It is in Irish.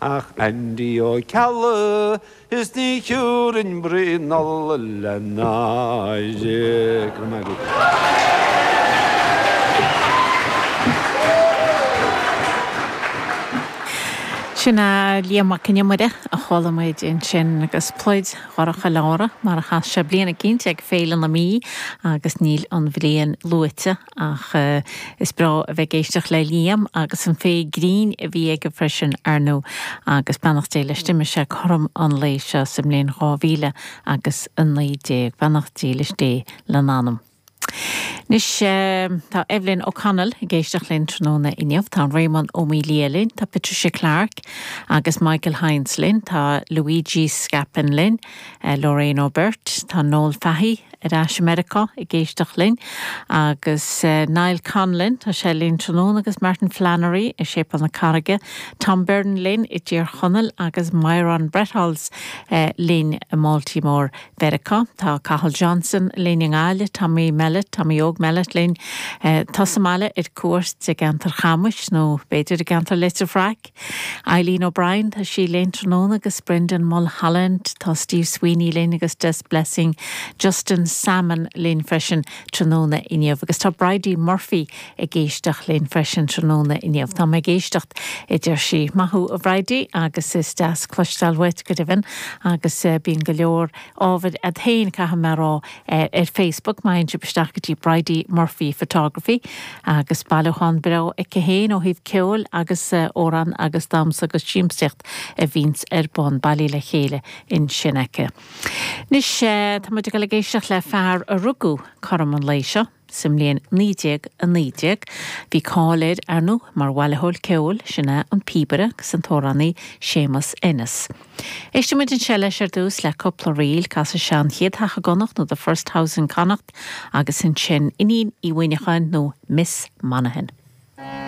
Ag Andy Ó Ceallaigh is ní thiúrfainn braon Nollaig le náire. Go raibh maith agat. Sin é Liam Mac Con Iomaire a chuala muid ansin agus Pluid Dhorcha Leára mar a chas sé bliain eicínt ag Féile na Mí agus níl an bhliain luaite Ach is breá a bheith ag éisteacht le Liam agus an féith grinn a bhí aige freisin, ar ndú, agus beannacht Dé leis d'imigh sé cothrom an lae seo sa mbliain dhá mhíle agus a naoi déag. Beannacht dílis Dé lena anam. Anois, tá Evelyn O'Connell ag éisteacht linn tráthnóna inniu, tá Réamonn Ó Maolaodha linn, tá Patricia Clarke agus Michael Hynes linn, tá Luigi Scapin linn, Lorraine Ó Birt, tá Noel Fahy ar ais i Meiriceá ag éisteacht linn, agus Niall Conlon, tá sé linn tráthnóna, agus Martin Flannery i Séipéal na Carraige, Tom Byrne linn i dTír Chonaill, agus Myron Bretholz linn i mBaltimore Mheiriceá. Tá Cathal Johnson linn i nGaillimh, Tommy Mellett, Tommy Óg Mellett linn, atá sa mbaile ar cuairt i gceantar Chamuis, nó b'fhéidir i gceantar Leitir Fraic? Eileen O'Brien, tá sí linn tráthnóna agus Brendan Mulholland, tá Steve Sweeney linn agus Des Blessing, Justin Salmon linn freisin tráthnóna inniu agus tá Bridie Murphy ag éisteacht linn freisin tráthnóna inniu. Tá mé ag éisteacht, a deir sí. Maith thú, a Bhridie, agus is deas cloisteáil uait, go deimhin, agus bíonn go leor ábhar a'd féin, caithfidh mé a rá, Ar Facebook, má théann sibh isteach go dtí Bridie Murphy Photography agus bailiúchán breá aici féin ó thaobh ceoil agus amhrán agus damhsa agus siamsaíocht a bhíonns ar bun, bailithe le chéile ansin aici. Anois, tá muid ag dul ag éisteacht le fear a rugadh cothrom an lae seo. Sa mbliain 1919, bhí cáil air, ar ndóigh, mar bhailitheoir ceoil, sin é, an píobaire agus an t-amhránaí Séamus Ennis. Éistimid anseo leis ar dtús, le cúpla ríl, casfaidh sé An Chéad Teach i gConnacht nó The First House in Connacht agus ansin Iníon Uí Mhuíneacháin nó Miss Monaghan.